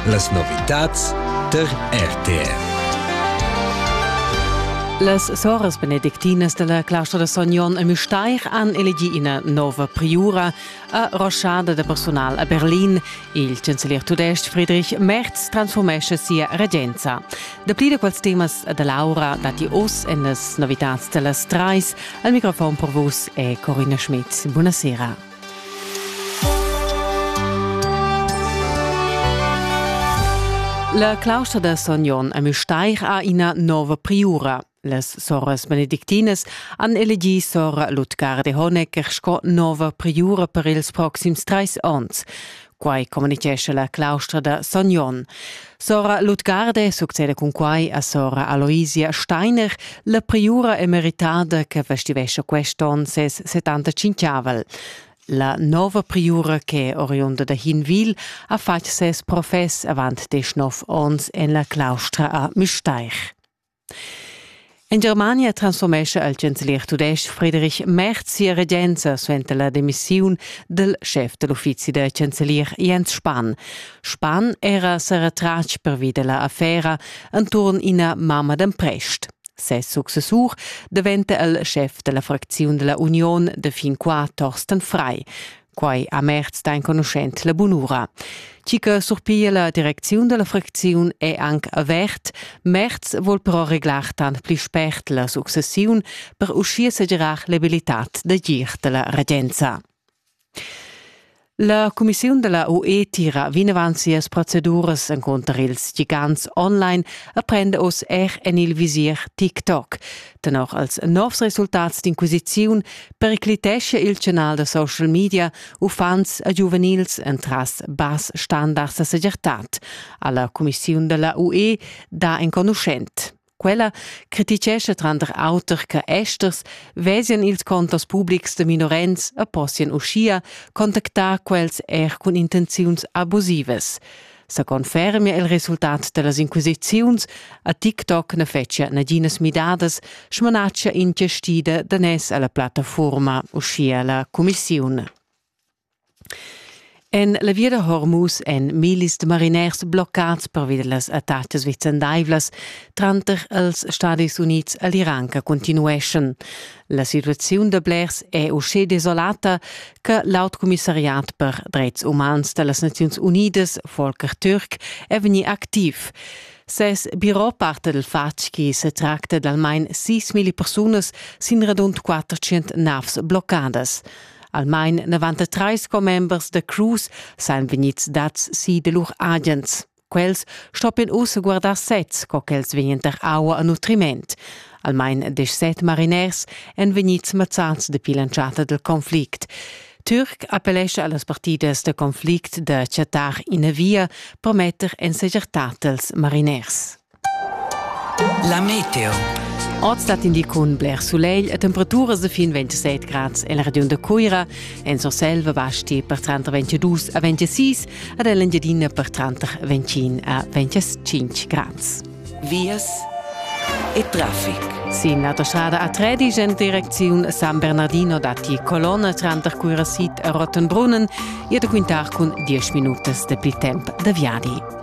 Las novitads tar RTR. Las soras benedictinas della claustra de Son Jon e Müstair han elegi ina nova priura a roschada de personal a Berlin. Il chancelier tudestg Friedrich Merz transformesce sia regenza. Dapli de quels temas de Laura dati oz en las novitats dellas Treis. Al microfon per vus è Corinna Schmidt. Buonasera. La claustra da Son Jon a Müstair ha ina nova priura. Las soras benedictinas han elegì sora Lutgar de Honecker sco nova priura per ils proxims trais onns. Quai communitgescha la claustra da Son Jon. Sora Lutgarde succeda cun quai a sora Aloisia Steiner, la priura emeritada che festivescia quest'onn ses 75-avel. La nova priura che oriunda da Hinwil ha fatg ses profess avant desch nov onns en la claustra a Müstair. En Germania transformescha il chancelier tudestg Friedrich Merz sia regenza suenter la demissiun dal schef da l'uffizi da chancelier Jens Spahn. Spahn era sa retratg pervi da la affera enturn ina mamma d'emprest. Ses successur daventa il schef da la fracziun da la Union da fin qua Thorsten Frei. Quai a Merz da enconuschent la bunura. Chi che surpiglia la direcziun della fracziun è anche avert. Merz vuol però reglar tant pli spert la successiun per uscir segirar l'abilitat da gir della regenza. La Commissiun della UE tira vinavant sias proceduras encontro ils gigants online e prende oss er en il visir TikTok. Tenor als novs resultats d'inquisiziun periclitescha il canal da social media uffants e giuvenils entras bass standards da segirtad, ha la cumissiun della UE dà enconuschent. Quella critichescha tranter auter che esters vesien ils contos publics de minorens e possien uschia contactar quels er cun intenziuns abusivas. sa confermia il resultat dellas inquisiziuns a TikTok na fetschia naginas midadas, smanatschia ingestida da nes alla plattafuorma, uschia la cumissiun. En la via da Hormuz èn millis de mariners bloccads pervi las attacas vicendaivlas tranter els Stadis Unids e l'Iran che continueschan. La situaziun da blers è uschè desolata che l'aut commissariat per dretgs umans da las Naziuns Unidas, Volker Türk, è vegnì activ. Ses birò parta dal fatg che se tracta d'almain 6.000 persunas sin radund 400 navs bloccadas. Almain 93 commembers da Cruz sain vegnids dads si de lur agens. Quels stoppien ussa guardar sez, co ch'els vegnan tar aua a nutriment. Almain deschset mariners èn vegnids mazzads dapi l'entschatta dal conflict. Türk appellescha a las partidas da conflict da chattar ina via per metter en segertà tals mariners. La meteo. Oz dat in di cun bler sulegl e temperaturas de fin 27 grads en la regiun de Cuira, en Surselva basti per 30 22 a 26 ad Engiadina per 30 25 a 25 grads. Vias e traffic. Sin autostrada A3 in direcziun San Bernardino datti colonna tranter Cuira Sid e Rottenbrunnen, ihr da quintar cun 10 minutas de più tempo de viadi.